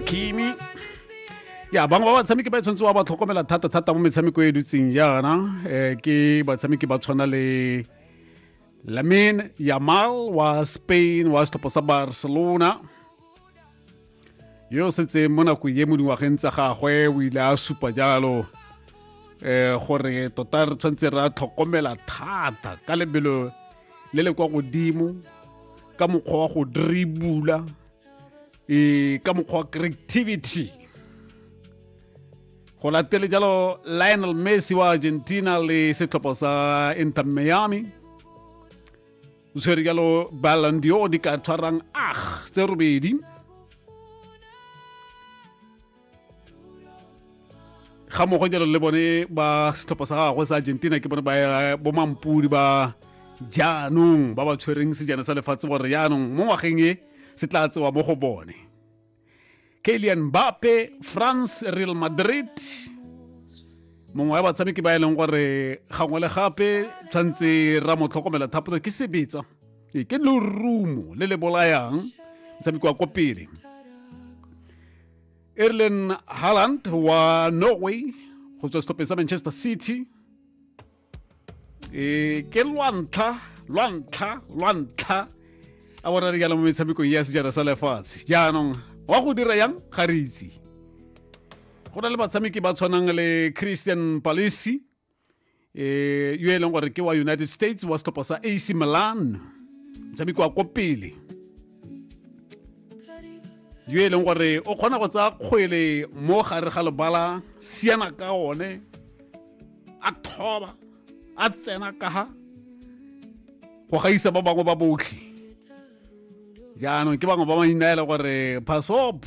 kimi ya bangwe ba batshameki ba e tshwanetse wa ba tlhokomela thata-thata mo metshameko e dutseng jaana um ke batshameki ba tshwana le lamin yamal wa spain wa setlhopha sa barcelona yo o setseng mo nako ye mo dingwageng tsa gagwe o ile a supa jalo um gore tota re tshwanetse re a tlhokomela thata ka lebelo le le kwa godimo ka mokgwa wa go dribula e ka mokgwa creativity go latele jalo lionel messi wa argentina le setlhopha sa inter miami o tshwere jalo ballon d'or di ka tshwarang ah tse robedi ga mogo jalo le bone ba setlhopha sa gagwe sa argentina ke bone ba bomampudi ba jaanong ba ba tshwereng sejana sa lefatshe gore jaanong mo ngwageng e se tla tsewa mo go bone kalian bape france real madrid mongwe wa batshameki ba e leng gore gangwe le gape tshwanetse ra mo tlhokomela thapotsa ke sebetsa ee, ke lorumo le le bolayang motshameki wa ko pele Erlen Haaland wa Norway go tswa setlhopheng sa Manchester City e ke lwantlha lwantlha lwantlha a bona re jala mo metshamekong ya sejana sa lefatshe jaanong wa go dira yang ga re itse go na le batshameki ba tshwanang le Christian Palisi eh yo e leng gore ke wa united states wa setlhopha sa ac milan motshameko wa ko pele yo e leng gore o kgona go tsaya kgwele mo gare ga lebala siana ka one a thoba a tsena ka ha go gaisa ba bangwe ba botlhe jaanong ke bangwe ba mainna e le gore pass up